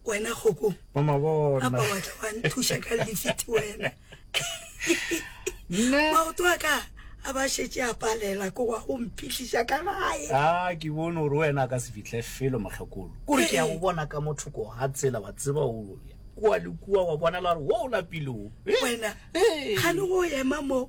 wena kgoko apa wa tla wa nthuša ka lifiti wena maoto a ka a ba šetše a palela ko wa go mphihliša ka gae a ke bone gore wena a ka se fihle felo mokgekolo kore ke ya go bona ka motho ko ga tsela wa tseba o kua le kua wa bonala gore wo o lapileo wena ga le go ema moo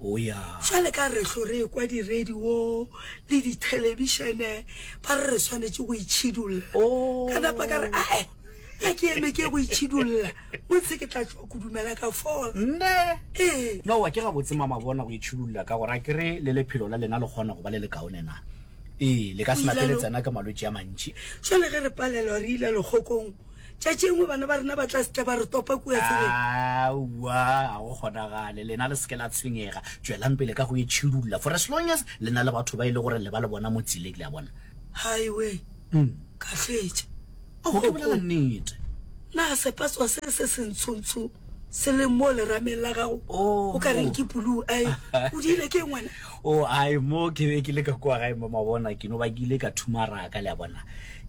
o ya. Bjale ka re ehlo re ekwa diredio le dithelebišene ba re re swanetše go itšhidulla, ka napa ka re, Ae, ga ke eme ke ye go itšhidulla, o ntshe ke tla tšwa kudu mela ka fola. Nne? Ee. Nowa, ke gabotse mama bona go itšhidulla ka gore a ke re le lephelo la lena le kgona go ba le lekaone na? Ee, le ka se napele tsena ke malwetši a mantši. Bjale ge re palelwa re ile lekgokong. Tšatši engwe bana ba rena ba tla setla ba re topa kua tseleng. Aowa, ga go kgonagale. Lena le seke la tshwenyega. Tšwelang pele ka go e tšhirulla. For as long as le na le batho ba e le gore le ba le bona mo tseleng, le a bona. Highway. Ka fetša. Ow, ke bolela nnete. Na sepatswa se se sentshontsho se leng mo lerameng la gago o ka reng ke puluu? Ai, o diile ke ngwana. O, ai, mo ke be ke le ka kua gae mo mabona, ke no bakile ka thumaraka, le a bona.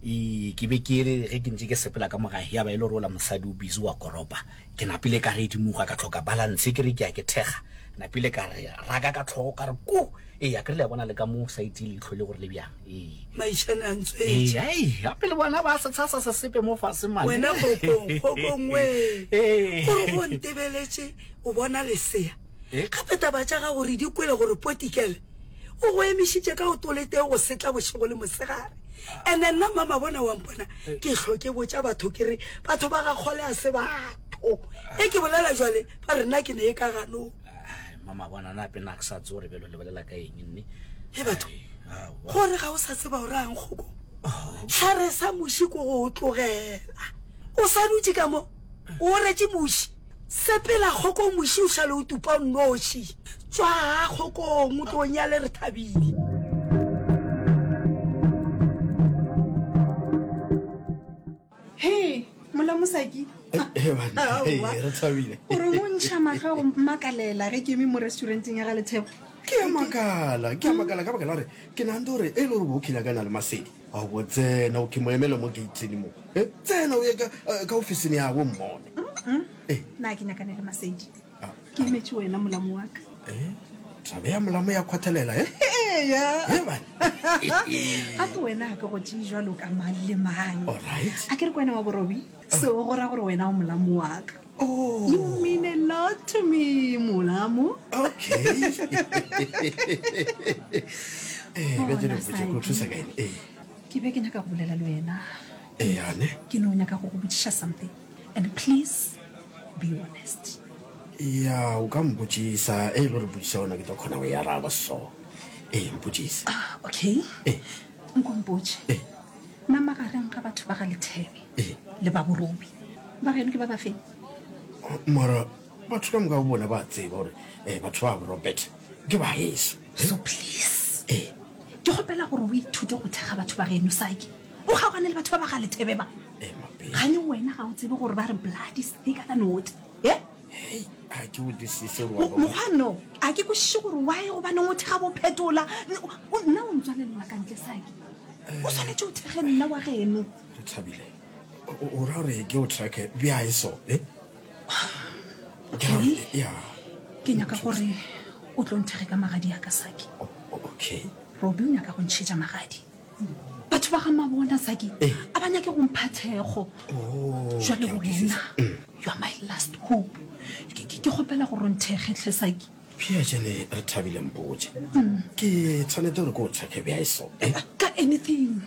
Ii, Ke be ke re ge ke ntše ke sepela ka mogae ya ba e le gore ola mosadi o busy wa koropa. Ke napile ka redimoga ka tlhoka balance ke re ke ya ke thekga. Napile ka re raka ka tlhogo ka re ku! Ee, a ke re le a bona le ka mo side ye leihlo le gore le bjang. Ee. Maishane a ntswetše. Ee, aii, gape le bona ba se tsha sa se sepe mo fase mane. Wena kgokong, kgokong wee! Ee. Gore go ntebeletše o bona lesea? Gape taba tša gago re di kwele gore Potikele o go emišitše ka o toletee go setla bošego le mosegare. Ene nna mama bona wa mpona ke hlo ke botša batho ke re batho ba ga kgole a se batho. E ke bolela jwale ba re nna ke ne e ka ganong. Mama bona na pena ke sa tsore belo le bolela ka eng nne. He batho gore ga o sa tseba gore a nkgoko tlhare sa muši ko go o tlogela o sa dutše ka mo o retše muši. Sepela kgokong moši o šale o tupa o nnoši. Tšwaha kgokong o tlo nyale re thabile. He, mola mosaki. Re thabile. O re o ntšha maga go makalela ge ke eme mo restauranteng ya ga Lethebo. Ke a makala, ke a makala ka baka la gore ke nagante gore e le gore bo kile ka na le masedi a go tsena o ke mo emele mo gatening mo. Tsena o ye ka ofising ya go mmone. na ke nyakane le masedi ke imetše wena molamo wa ka eh, taba ya molamo ya kgwathelela e ga ke wena ga ke go tee jalo ka mang le mang a ke re ko wena wa borobi seo go ra gore wena o molamo wa ka Oh. You mean a lot to me, Mulamu. Okay. Eh, ke be ke nyaka go bolela le wena Eya ne. Ke no nyaka go go botšiša something and please be honest. Eya o ka mpotšisa e lo re botšiša ona ke tlo khona go yaraba so e mpotšisa. Ah okay. E. Nko mpotše. E. Na magareng ga batho ba ga Lethebe e. le ba Borobi ba geno ke ba ba feng? Mara batho ka moka o bona ba tseba gore eh, batho ba Robert ke ba heso. So please. E. Ke kgopela gore o ithute go thekga batho ba geno sake. o kgaogane le batho ba ba ga lethebe ba gane wena ga o tsebe gore ba re blood is thicker than water e mokgwanno a ke kwešiše gore wa e gobane o thega bophetola nna o ntswalelela ka ntle sake o swanetse o thege nna wa geno o ra gore ke o tracke bja e so eh? ke nyaka gore o tlo nthege ka magadi ya ka sake okay robi o nyaka go ntšhetša magadi batho ba ga mabona saki eh. a ba nyake go mpha thekgo oh, jale wena you are my last hope ke kgopela go ronthegetlhe saki pia jane re thabile mpoje mm. ke tshwanetse gore ko o tshwake bja eso eh? ka anything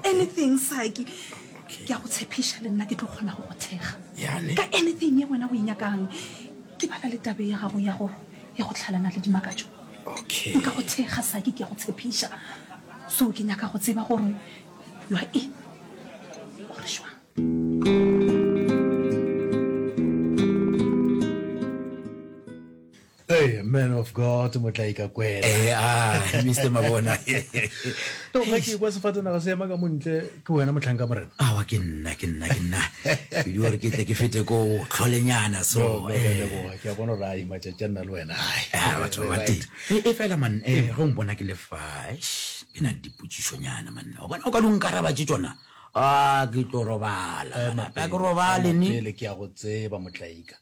anything saki ke ya go tshephisa le nna ke tlo kgona go go thega ka anything ye wena o e nyakang ke bala le tabe ya gago ya go tlhalana le dimakatso Okay. Nka go thekga saki ke a go tshepiša. So ke nyaka go tseba gore you are in. Gore šwang. Hey, man of God, motlai ka kwela. Eh, ah, Mr. Mabona. No, ga ke kwa sefatanaga se ema ka montle Ke wena mohlanka morena? Awa ke nna, ke nna, ke nna. Ke di gore ke tle ke fete ko tlholenyana so. No, no, eh. leboga. Ke a bona gore ai matšatši a nna le wena ai. Ah, batho ba teng. E, e fela man, eh, ge o mpona ke le fa, eish, ke na le dipotšišonyana man. O bona o ka di nkaraba tše tšona? Ah, ke tlo robala. Eh, Mape, ke robale ni. Pele ke ya go tseba motlaika.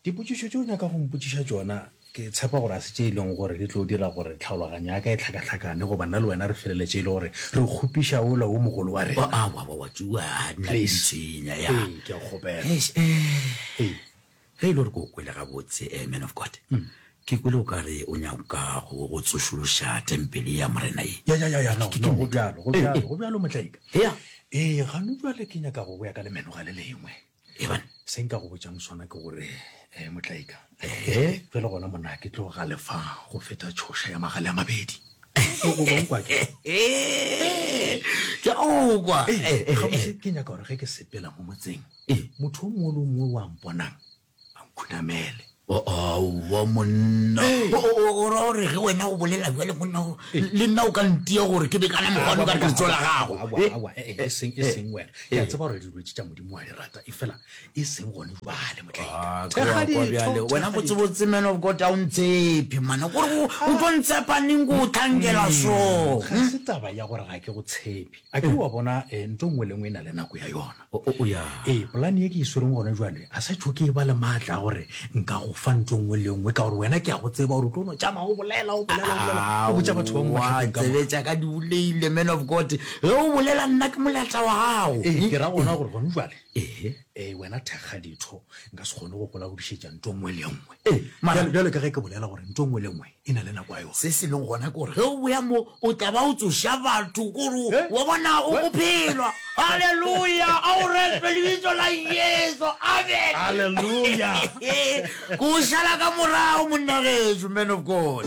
Dipotšišo tše o nyaka go mpotšiša tšona ke tshepa gore ga se tše e lego gore di tlo dira gore tlhaologanyo ya ka e hlakahlakane goba nna le wena re feleletše e le gore re kgopiša ola wo mogolo wa rena. Please. Ee, ke a go kgopela. Ee. Ge e le gore ke go kwele gabotse, eh, man of God, ke kwele o ka re o nyaka go go tsošološa tempele ye ya Morena ye. Ya, ya, ya, ya, no, no, go bjalo, go bjalo, go bjalo, Motlaika. Ee, gano bjale ke nyaka go boya ka lemeno ga le lengwe. Eban, se nka go botšang sona ke gore, eh, Motlaika, ehe, ge le gona monna, ke tlo galefa go feta tšhoša ya magale a mabedi. O o bong kwa ke. Ke o kwa. Eh, eh, eh, eh. Ke nyaka gore ge ke sepela mo motseng, eh, motho o mongwe le o mongwe wa mponang a nkhunamele. Aowa monna o ra gore ge wena o bolela bjale monna le nna o ka ntia gore ke bekana mogwane ka letso la gago eseng e seng wena ke a tseba gore dilwetse tša modimo wa di rata e fela e seng gone jale motlhaekabjale wena botsebotse man of god a o ntshepe mana gore o tlo ntshepaneng ko o tlhankela so ga se taba ya gore ga ke go tshepe a ke wa bona nto nngwe le nngwe e na le nako ya yona Ee, polane ye ke e swereng gona jwale a sa tšho ke e ba le maatla a gore nka go fa ntho nngwe le nngwe ka gore wena ke ya go tseba gore o tlo no tšama o bolela o bolela o bolela o botša batho ba moatsebetša ka di boleile man of god ge o bolela nna ke moletla wa gago ee ke ra gona gore gone jwale ee ee wena thekga ditho nka se kgone go kola go dišetša nto nngwe le nngwe ee jalo ka ge ke bolela gore nto nngwe le nngwe e na le nako ya yona. Se se lego gona ke gore ge o boya mo, o tla ba o tsoša batho gore Eh? wa bona o go phelwa. Halleluja! A o retwe lebitso la Jesu. Amen. Halleluja! Ko o šala ka morago, monnagetšo, man of God.